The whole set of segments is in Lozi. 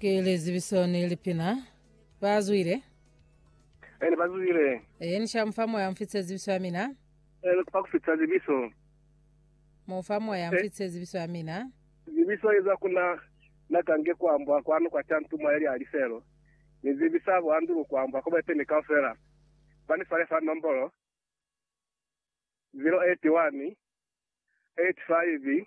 Ke lizibiso ni lipina. Ba zwile. Ene ba zwile. E ni sha mufa moya mfitse zibiso ya mina. Ene kupa kufitsa zibiso. Mufa moya mfitse zibiso ya mina. Zibiso iza kuna na kange kuambwa kwanu kwa cha ntuma ili aliselo. Ni zibisa bo andulu kuambwa kobe peni kaufela. Ba ni fale fa nombolo 081 85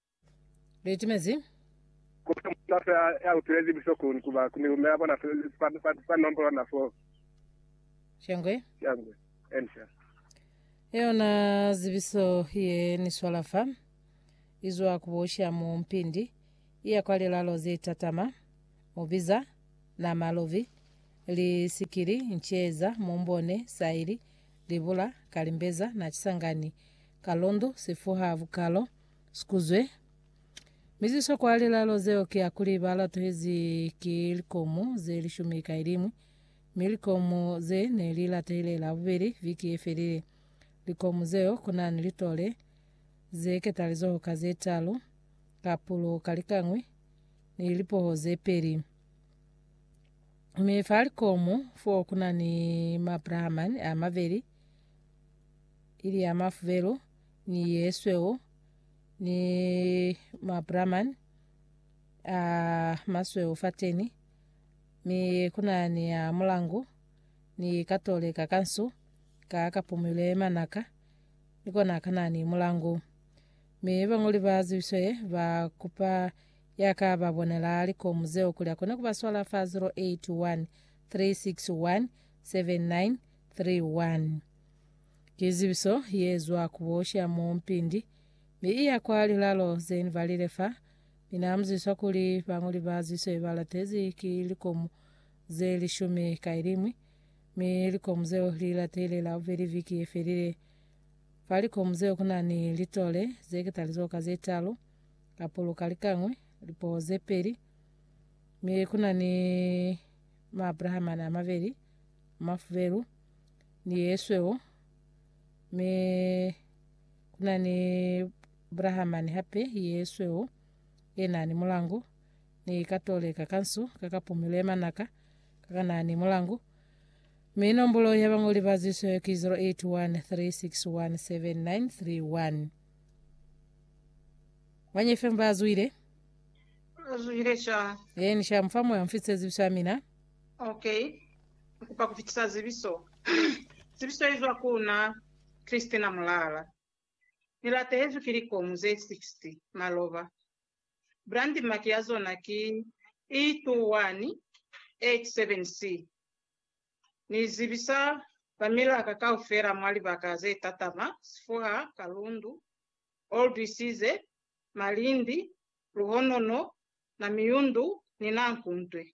Litimezi. Ku ba ni mutu ya, ya utwezi buhloko ni ku ba ni lume ya bona fa, fa, fa, fa nombolo na fo. Shangwe. Shangwe. Ensa. Yona zibiso ye ni swala fa, izwa ku bosha mu mpindi, iya kwa lilalo ze tatama, mubiza, na malovi, li sikili, nceeza, mumbone, saili, libula, kalimbeza, na kisangani, kalundu, sifuha, bukalo, Sikuzwe. Mi ziswakwa lilalo zeo ki akuli ba latuhezi ki likomo ze lishumi ka ilimwi, mi likomo ze ne li latuhile Labubeli viki ye felile. Likomo zeo kunani litole ze ketalizoho ka ze talu, kapulo ka likañwi, ni lipoho ze peli. Mi fa likomo fo kunani mabrahamani a mabeli, ili ya mafubelo, ni yesweu ni mabraman a masweu fateni mi kunani ya mulangu ni katole ka kansu ka kapumile manaka ni kona kanani mulangu mi bangoli ba zibiswe ba kupa ya ka ba bonela likomu zeo kuli akone kuba swala fa 081 361 7931 Ki zibiso ye zwa ku bosha mo mpindi, mi iya kwa lilalo ze ni balile fa. Mi na muziswa kuli bañoli ba ziswe ba latezi ki likomu ze lishumi ka ilimwi, mi likomu zeo li latile la bubeli viki ye felile. Fa likomu zeo ku na ni litole ze ketalizoka ze talu, kapulu ka likañwi, lipo ze peli, mi ku na ni maabrahamani a mabeli, mafubelu, ni yesweu mi kuna ni brahamani hape yesweu ena ni mulangu ni katoleka kansu kakapumile manaka kakana ni mulangu mi nombolo ya bangoli ba zisweu ki 0813617931 wanyefemba azwile azwile sha yeni sha mfamu ya mfitse zibiswa mina Ok. Ni kupa ku fitisa zibiso. Zibiso i zwa ku na, Christina Mulala. Ni latehezwi ki likomu ze 60, maloba. Brand mark ya zona ki E2187C. Ni zibisa ba milaka kaufela mwa libaka ze tatama, Sifuha, Kalundu, Old Isize, Malindi, Luhonono, Namiyundu ni Nankuntwe.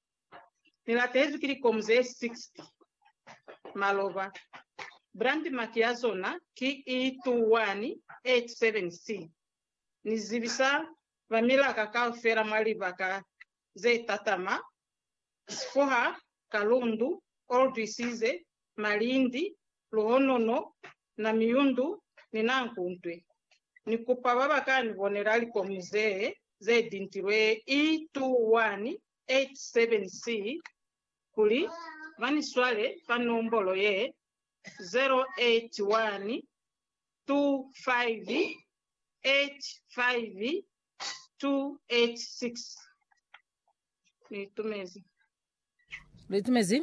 Ni latezwi ki likomu ze 60. Maloba. Brand mark ya zona ki E2187C. Ni zibisa ba milaka kaufela mwa libaka ze tatama, sifuha, kalundu, old isize, malindi, luhonono, na miyundu, ni na nkuntwe. Ni kupa baba ka ni bonela likomu zee ze dintilwe E2187C kuli ba ni swale fa nombolo ye, 0812585286. Ni itumezi. Lu itumezi?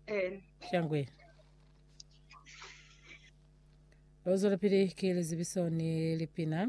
Eh. Shangwe. Lo zwelapili ki lizibiso ni lipina.